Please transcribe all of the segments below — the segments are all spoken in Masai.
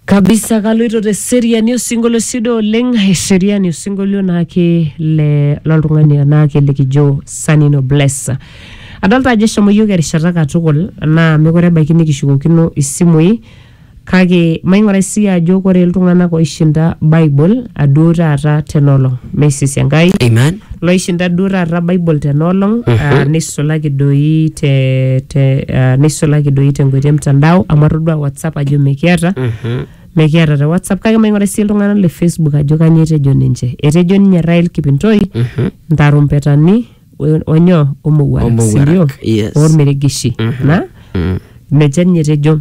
kabisa kaloito te seriani osinkolio sido oleng eseriani osinkolio naake le loltung'ani naake likijo sanino bless adolta ajo eshomo yiok erishata katukul naa mekure ebaiki nikishukokino isimui kake maing'urai sii ajo kore iltung'anak oishinda bible aduo taata tenolong meisisi enkai Amen. Loishinda duo taata Bible tena olong ah, neisulaki doi te, te, ah, neisulaki doi tenkoitoi e mtandao amu atodua WhatsApp ajo mikiata mikiata te WhatsApp kake maing'ura sii iltung'anak le Facebook ajo kanyoo etejo ninche. Etejo ninye Rael Kipintoi ntarumpetani o- onyoo omowuarak Omowuarak, sindio yes. olmeregeshi na nejia ninye etejo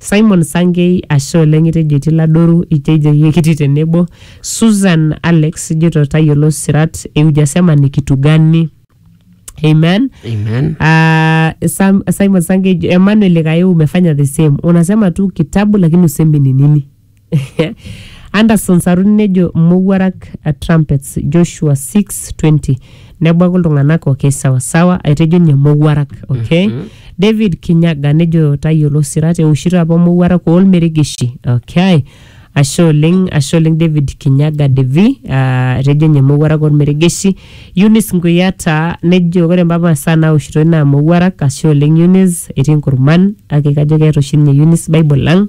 Simon Sankei, ashe oleng itejo etii Ladoru, itejo iyie kitii tenebo. Susan Alex, ijoito tayiolo sirat e ujasema nikitugani. Amen. Amen. Ah, Sam, Simon Sankei, Emmanuel Likae umefanya the same. Unasema tu kitabu lakini usemi ni nini. Anderson Saruni nejo mowuarak a trumpets Joshua 6:20 nebuaku iltung'anak okay sawa sawa aitejo ninye mowuarak okay David Kinyaga nejo tayiolo sirat eoshito apa mowuarak olmeregeshi okay ashe oleng ashe oleng David Kinyaga Devi ah, etejo ninye mowuarak olmeregeshi Eunice Nguyiata nejo ore mpapa masaa naoshitoi naa mowuarak ashe oleng Eunice etii nkurman kake kajo keeta oshi ninye Eunice Bible ang